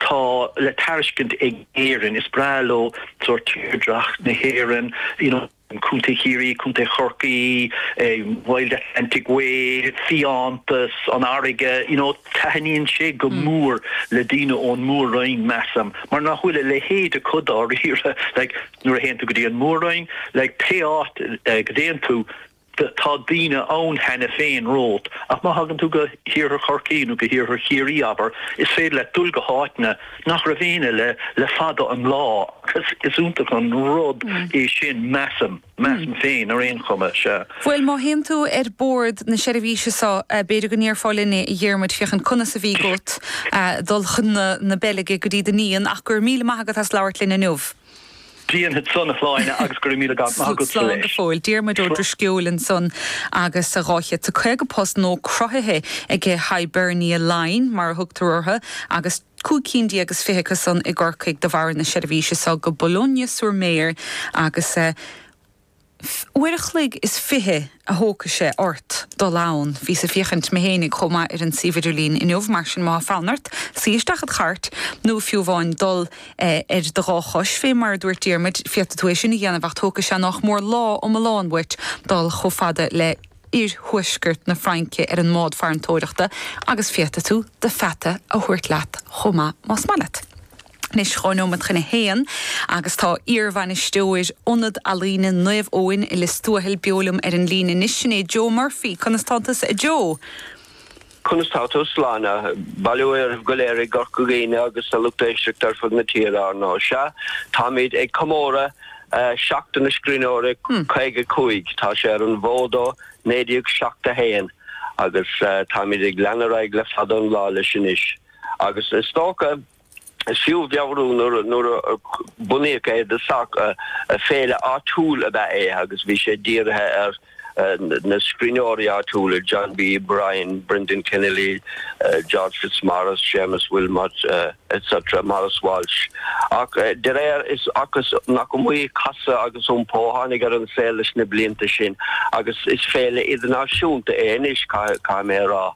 tá le tairiscint ag Éirinn. Is breá leo sórt tírdhreach na hÉireann, you know, Contae Chiarraí, Contae Chorcaí, Wild Atlantic Way, fiántas, an fharraige, you know, taithníonn sé go mór le daoine ón Mór-Roinn, measaim, mar nach bhfuil a leithéid acu dáiríre, like, nuair a théann tú go dtí an Mór-Roinn, like, pé áit go dtéann tú, Tá daoine ann cheana féin romhat, ach má thagann tú go hiarthar Chorcaí nó go hiarthar Chiarraí, abair, is féidir leat dul go háiteanna nach raibh éinne eile le fada an lá agus is iontach an rud é sin, measaim. Measaim féin ar aon chuma, sea. Bhuel, má théann tú ar bord na seirbhíse so, b'fhéidir go ndéarfá linne, a Dhiarmuid, féachaint conas a bheidh agat dul chun na Beilge go dtí do iníon, ach go raibh míle maith agat as labhairt linn inniu. Déanfad san, a Shláine, agus go raibh míle maith agat. Slán go fóill. Diarmuid Ó Drisceoil ansan agus a 250 post nua cruthaithe aige Hibernia Line mar a thugtar orthu agus cúig cinn déag is fiche acu san i gCorcaigh de bharr na seirbhíse so go Boulogne-sur-Mer agus Uair a chloig is fiche a thógfaidh sé ort dul ann. Bhíos ag féachaint mé fhéinig chomh maith ar an suíomh idirlín inniu, mar sin más fonn ort suí isteach id chairt, nó fiú amháin dul ar do dhá chois, fé mar a dúirt Diarmuid, féadfaidh tú é sin a dhéanamh, ach tógfaidh sé nách mór lá iomlán uait dul chomh fada le h-iarthuaisceart na Fraince ar an mbád farantóireachta, agus féadfaidh tú do pheata a thabhairt leat chomh maith más maith leat. Anois dhá neomat chun a haon agus tá iarbhainisteoir Ionad Ealaíne Naomh Eoin i Lios Tuathail beo liom ar an líne anois. Sin é Joe Murphy. Conas tánn tusa a Joe? Conas tánn tú, a Shláine? Bail ó Dhia oraibh go léir i gCorca Dhuibhne agus sa lucht éisteachta ar fud na tíre ar ndóigh. Sea, táimíd ag comóradh Seachtain na Scríbhneoirí, caoga cúig, tá sé ar an bhfód ó naoi déag seacht a haon agus táimíd ag leanúint ar aghaidh le fada an lá leis anois agus is dócha, Is fiú a mheabhrú nuair a bunaíodh é i dtosach, féile áitiúil ab ea é agus bhí sé dírithe ar na scríbhneoirí áitiúla, John B., Bryan, Brendan Kennelly, George Fitzmaurice, Séamus Wilmot, etc. Maurice Walsh. Ach dáiríre is dócha nach iomaí casadh agus iompó a tháinig ar an saol leis na blianta sin agus is féile idirnáisiúnta é anois, caithfidh mé a rá.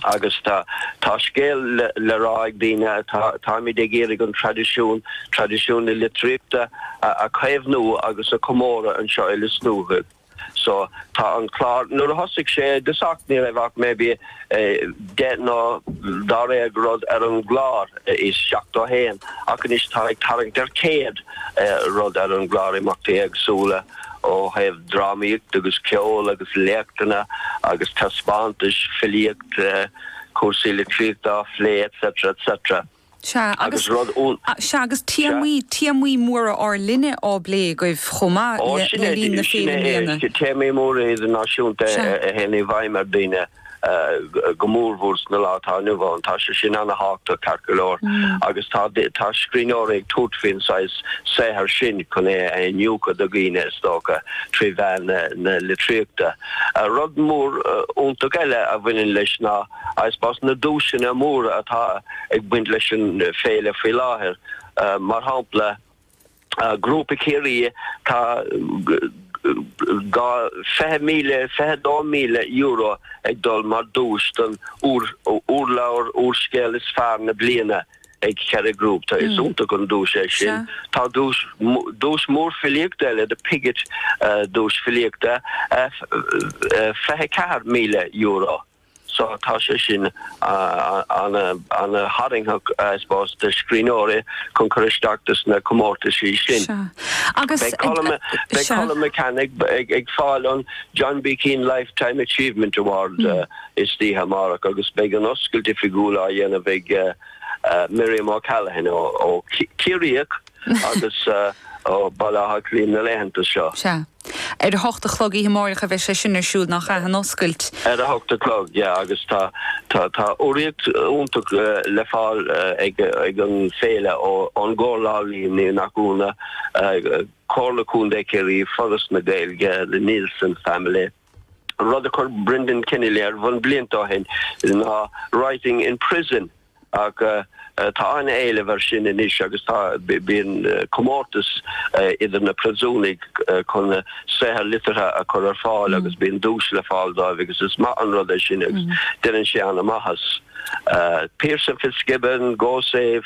Agus tá, tá scéal le rá ag daoine, táimid ag iarraidh an traidisiún, traidisiún na litríochta a chaomhnú agus a chomóradh anseo i Lios Tuathail. So tá an clár, nuair a thosaigh sé, i dtosach ní raibh ach maybe deich nó dáréag rud ar an gclár, i seachtó a haon, ach anois tá ag tarraingt ar chéad rud ar an gclár, imeachtaí éagsúla. Ó thaobh drámaíocht agus ceol agus léachtanna agus taispeántais, filíocht, cúrsaí litríochta á phlé etc. etc. Sea agus, Agus rud iontach. sea agus Sea? téamaí, téamaí móra ár linne á bplé agaibh chomh maith Ó le, sin le é, linn na, sin féile i é, mbliana. téamaí móra idirnáisiúnta Sea. a théann i bhfeidhm ar dhaoine. go mórmhór sa lá atá inniu ann. Tá sé sin ana thábhactach ceart go leor agus tá scríbhneoirí ag tabhairt faoin saghas saothair sin chun é a iniúchadh do dhaoine is dócha trí mheán na litríochta. Rud mór iontach eile a bhaineann leis ná, I suppose, na duaiseanna móra atá ag baint leis an Féile faoi láthair. Mar shampla. Grúpa Chiarraí tá dhá fiche míle, fiche dó míle euro ag dul mar duais don úrleabhar, úrscéal is fearr na bliana ag Kerry Group, tá. Is iontach an duais é sin. Tá duais mór filíochta eile, The Pigott duais filíochta, fiche ceathair míle euro. So tá sé sin an-tharraingtheach I suppose do scríbhneoirí chun cur isteach do sna comórtaisí sin. Beidh Colum McCann ag fáil an John B Keane Lifetime Achievement Award istoíche amárach agus beidh an oscailt oifigiúil á dhéanamh ag Miriam O'Callaghan, ó, Ciarraíoch. agus ó Bhaile Átha Cliath na laethanta seo. Sea. Ar a hocht a chlog oíche amáireach a bheidh sé sin ar siúl, nach ea? An oscailt. Ar a hocht a chlog, yeah, agus tá, tá, tá urraíocht iontach le fáil ag, ag an bhféile ó, ón gComhairle Ealaíon Náisiúnta, Comhairle Contae Chiarraí, Foras na Gaeilge, The Neilson Family. An rud a chuir Brendan Kennelly ar bun blianta ó shin ná Writing in Prison agus tá an-éileamh air sin anois agus tá, bíonn comórtas idir na príosúnaigh chun saothair liteartha a chur ar fáil agus bíonn duais le fáil dóibh agus is maith an rud é sin agus déanann sé an-maitheas. Pierse and Fitzgibbon, Go Save.